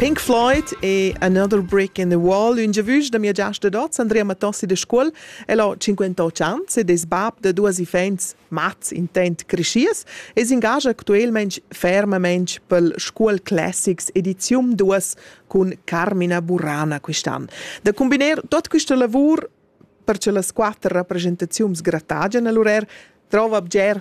Pink Floyd e Another Brick in the Wall, un giavüsch da mia giasta d'hoz, Andrea Matossi de Scuol, el ho 58 ans ed es bab da duos iffaints mats intent creschiers e s'ingagia actuelmaing fermamaing pel Scuol Classics edizium 2 cun Carmina Burana quist'an. Da cumbiner tot quista lavur per che las quatter rappresentaziuns gratagian a l'urer, trova bger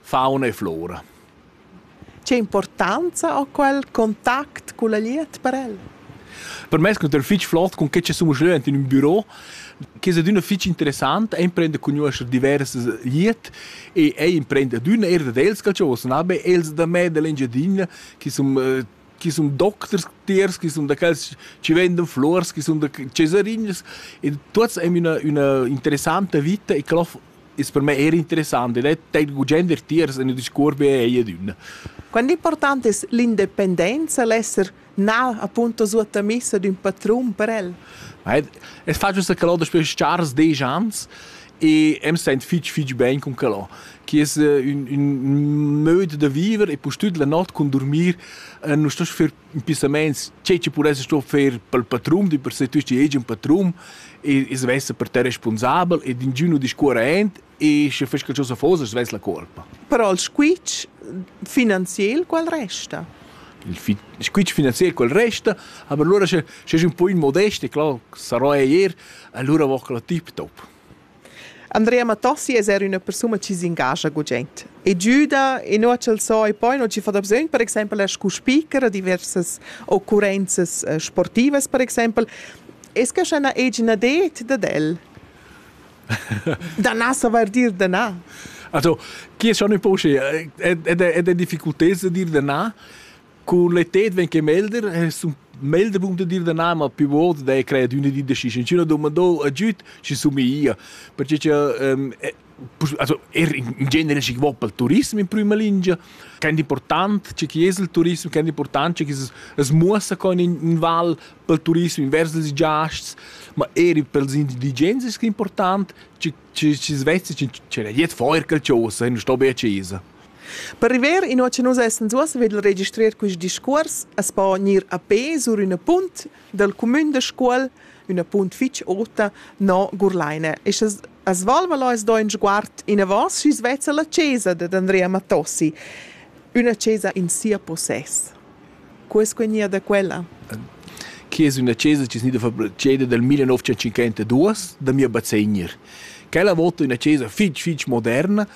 Fauna e flora. Che importanza ha quel contact culla glieud per el? Per me es cunter fich flot cun che che sun leu ant in ün büro, che es adüna fich interessant, e imprender cugnuoscher diversas glieud e ei imprender adüna eir dad els qualchosa, na be els da me da l'Engiadina chi sun chi sun docters tiers, chi sun da quels chi vendan flurs, chi sun da cesarinas e tuots aim üna üna interessanta vita e clof Es per me eir interessant ed è teil gugent er tiers in discuors be ei ed ün. Quant important es l'independenza, l'esser na appunto suottamissa d'ün patrun per el? Ma es facile sa calò daspö chars desch ans e am sent fich fich ben cun calò, que es ün ün möd da viver e pustüt la not cun durmir nu stoss fer impissamaints tgei che pudesse sto fer pel patrun, di per se tüst di egen patrun e e svesse per te responsabel e d'ingün nu discuorra aint e sche fes qualcosa fosa svess la colpa. Però il squitsch finanziel qual resta? Il fi squitsch finanziel quel resta, aber lura sche sche es ün po inmodest e clar sarò eir, allura voch la tip top. Andrea Mattossi es eir üna persuna chi s'ingascha gugent e güda e no ch'el so e poi no chi fa dabsögn per exaimpel er scu speaker a diversas occurrenzas eh, sportivas per exaimpel es que scha na egina det dad el? Danà savair dir danà. Also, chi es schon in poche ed è difficultà de dir danà, Cun le tet ven che melder es un melder punct da dir da na, ma più volte dai credo üna di da schi, schi üna domandò a giüt, schi somiglia, perche cha ehm also er in genere schi vo pel turism in prüma lingia, quant important che chi es il turism, quant important che chi's as muossa co in in val pel turism invers ils giasts, ma eir pels indigens es que important, che chi's vessa, ch'el jet feuer qualchosa e nun sto be a chesa. Per river inua cha nus essans uossa vegl registrer quist discuors as po gnir a pe sur üna punt dal cumün da Scuol, üna punt fich ota no Gurlaina e scha's as valvalo as do ün sguard inavant sü svezza la chesa dad Andrea Matossi, üna chesa in sia possess. Cu es que gnia da quella? Chi es üna chesa chi es gnida ceda dal millenovecentocinquantaduos da mia bazegnir. Quella vota üna chesa fich fich moderna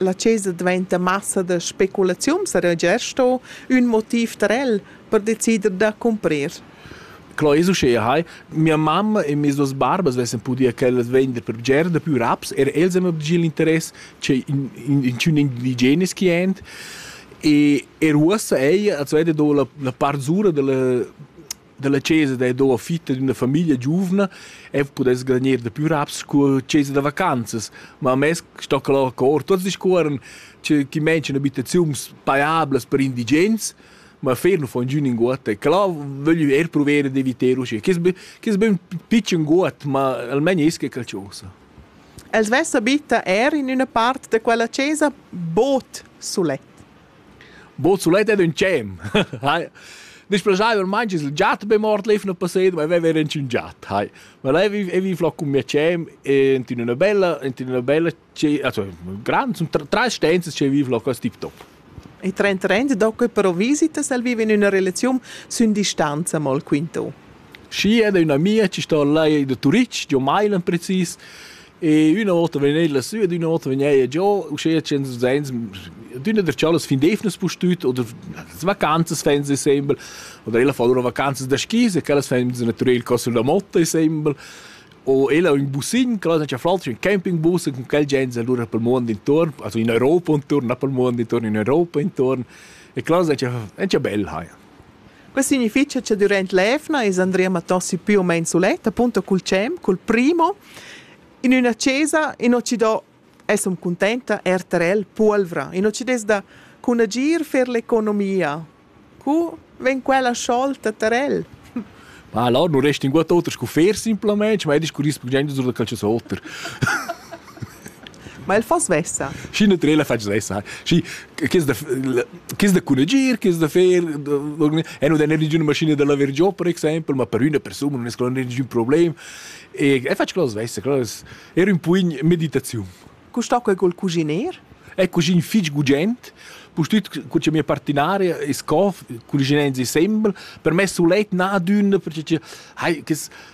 La chesa dvainta massa da speculaziun, sarà gia sto ün motiv per el per decider da cumprir. Clo es uschea hai, mia mamma e mes duos barbas vessan pudia quellas vender per bger da pü raps, er els han obgi l'interess che in, in, in tschun indigenes chi ent. E er uossa ella als veda do la, la part zura della dalla chesa da do fitta d'una famiglia giuvna e pudess garanir da più raps cu chesa da vacanzas, ma mez sto que lur cor tots discuorran che chi mention abitaziuns paiablas per indigens, ma fer nu fon giü ninguot e clà vöglio eir pruver d'eviter uschè. Chi es be chi es be ün pitschen guot, ma almain es que qualchosa. El svessa bitta eir in üna part da quella chesa bod sulet. Bo sulet ed ün tschem. Displaschaiva ormain chi s'l giat be mort l'eiv nu passet, ma vaiva eir ins ün giat, hai. Ma là e viv là cun mia tschem e int in üna bella int in üna bella also grand sun trais stanzas che viv là cust tip top. E trend trend do que però visitas al viva in üna relaziun sün distanza mal quinto. Schi ed üna mia chi sto là da Turitg, giò Mailan precis, E üna vota vegn eir lassü ed üna vota vegn eir giò, uschea tschient usins, d'üna der tschallas fin d'eivnas pustüt oder las vacanzas fain se sembel, oder ella fa lura vacanzas da skis e quellas fain natürel cò sulla motta sembel. O ella ho ün bussin, quella non c'ha flaltsch, ün campingbus e cun quel gens allura pel muond intuorn, also in Europa intuorn, na pel muond intuorn, in Europa intuorn. E quella non c'ha bel haja. Quei signifitga che duront l'evna es Andrea Matossi più o meno sulet, appunto cul tschem, col primo, in üna chesa in Occident es hom cuntenta RTL Puolvra. In Occident da cun agir fer l'economia. Cu vegn quella sciolta tarel? Ma allora non resta in guat oter sco fer simplamente, ma è discurrire per gente sul calcio oter. Ma el fa svessa. Schi na trela fatg svessa. Schi chis da chis da cunagir, chis da fer e non der ninguna maschina da laver giò per exempel, ma per üna persuna non es quella ningün problem. E e fatg cose svessa, cose era un pugn meditaziun. Cu sta quel col cuginer? È cugin fich gugent, pustüt cu c'è mia partinaria e sco cuginenzi sembel, per me sulet na d'ün perché hai chis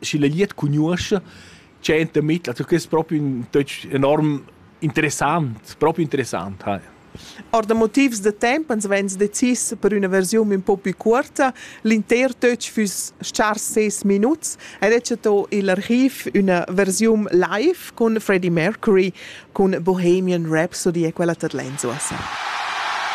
schi la glied cugnuoscha, c'è in der Mittel. Also, das ist propi ein Deutsch enorm interessant, propi interessant. Hi. Or da motivs da temp ans vegns decis per üna versiun un po più cuorta. L'inter töch füss chars ses minuts ed è chato il archiv üna versiun live cun Freddie Mercury cun Bohemian Rhapsody e quella tad lenzo a sa.